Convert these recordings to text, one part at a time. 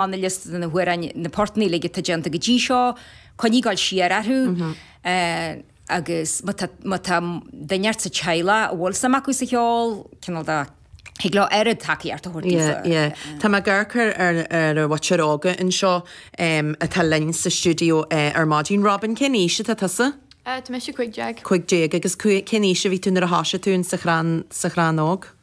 an liosta de na hamhráin, na portanna uilig atá déanta go dtí seo, coinnigh ag gabháil siar orthu agus má tá, má tá duine inteacht sa teaghlach a bhfuil suim acu sa cheol, cineál de, thig leo oiread tacaíocht a thabhairt Yeah, dóibh. yeah. Tá mé ag amharc ar, ar, ar an cheathrar óga anseo em atá linn sa stiúideo eh ar maidin. Robin, cén aois atá tusa? Eh, tá mise cúig déag. Cúig déag. Agus cú, cén aois a bhí tú nuair a thosaigh tú in sa chrann, sa Chrann Óg?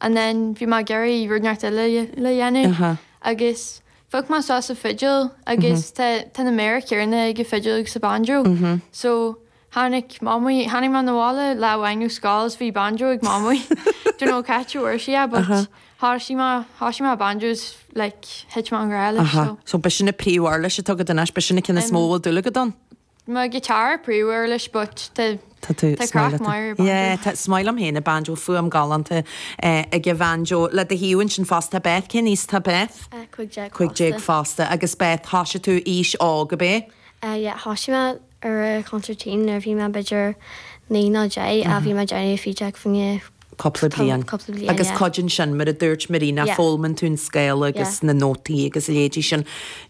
And then bhí mé ag iarraidh rud inteacht eile a dhéanamh agus phioc mé suas an fidil agus tá tá na méara céanna ag an fidil agus an banjo. So tháinig mé, tháinig mé 'na bhaile lá amháin ó scoil is bhí banjo ag Mamaí. Don't know cá háit a bhfuair sí é but thosaigh mé, thosaigh mé banjo is like thit mé i ngrá leis so. So b'shin na príomhuirlisí atá agat anois, b'shin na cinn is mó a bhfuil dúil agat ann? mo guitar príomhuirlis but tá Tá tú tá craic is maith leat é. mhaith ar Yeah, banjo. tá is maith liom féin an banjo, fuaim galánta eh, ag an bhanjo. Le do thaobh ansin fosta tá Beth, cén aois atá Beth? Eh, cúig déag Cúig déag fosta. fosta agus Beth, thoisigh tú ag aois óg, ab é? Eh, yeah, thoisigh mé ar an consairtín nuair a bhí mé b'fhéidir naoi nó deich a bhí mé ag déanamh fideog fá choinne cupla bliain. cupla bliain, Agus yeah. cuideann sin, mar a dúirt Marina, Yeah. foghlaimíonn tú an scála agus Yeah. na nótaí agus a leithéidí sin.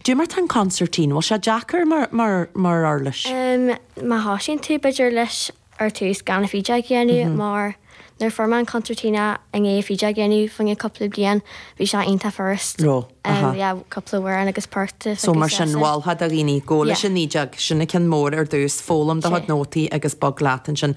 Goidé mar tá an concertina, bhfuil sé deacair mar, mar, mar uirlis? Um, má thosaíonn tú b'fhéidir leis ar tús gan an fideog a dhéanamh mar nuair fuair mé an concertina i ndiaidh an fideog a dhéanamh fá choinne cupla bliain bhí sé iontach furast. Ró, aha. Um, yeah, cupla fonn agus porta. So mar sin mholfá do dhaoine gabháil Yeah. leis an fhideog, sin an ceann mór ar dtús, foghlaim do chuid Sea. nótaí agus bog leat ansin.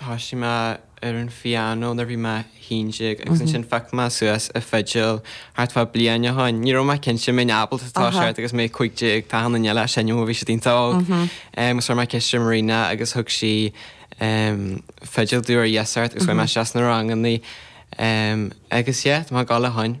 thosaigh mé ar an phianó nuair a bhí mé 11 agus ansin phioc mé suas an fidil thart fá bliain ó shoin. Ní raibh mé cinnte mbeinn ábalta toiseacht agus mé 15 tá na daoine eile ag seinm ó bhí siad iontach óg agus chuir mé ceist ar Marina agus thug sí fidil domh ar iasacht agus chuaigh mé isteach sna rangannaí agus yeah tá mé ag dul ó shoin.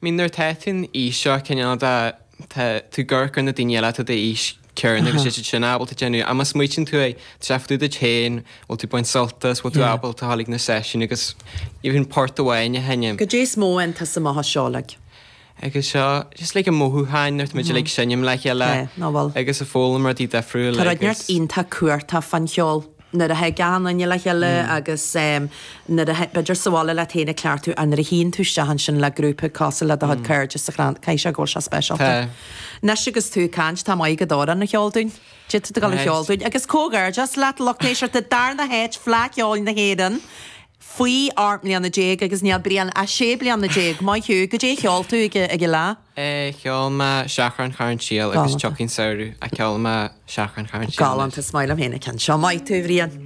mean nuair atá tú an aois seo cineál de tá tú ag amharc ar na daoine eile atá an aois chéanna agus iad sin ábalta déanamh ach má smaoitíonn tú é tá sé fá dtaobh díot féin, bhfuil tú baint sult as, bhfuil tú ábalta ghabháil chuig na seisiúin agus even port amháin a sheinm. Cad é is mó atá sa maitheas seo like? Agus seo just like an mothúcháin nuair atá muid like seinm le chéile agus ag foghlaim rudaí difriúil agus. Tá rud iontach cumhachtach fán cheol. nuair a thig achan duine le chéile agus nuair a, b'fhéidir, sa bhaile leat féin ag cleachtadh ach nuair a théann tú isteach ansin le grúpa cosúil le do chuid cairde sa Chrann Óg, caithfidh sé go bhfuil sé speisialta. Tá. Anois agus tú ag caint, tá tú ag gabháil amhrán a cheol dúinn. Goidé atá tú ag gabháil a cheol dúinn agus comhghairdeas leat, a lucht éisteachta an darna háit, Fleadh Cheoil na hÉireann faoi ocht mbliana déag agus níl Brian ach sé bliana déag. Maith thú. Goidé a cheol tú ag an fhleadh? Eh cheol mé Seachrán Charn tSiail agus Tiocfaidh an Samhradh, ceolfaidh mé Seachrán Charn tSiail anois. Galánta, is maith liom féin an ceann seo. Maith thú, a Bhriain.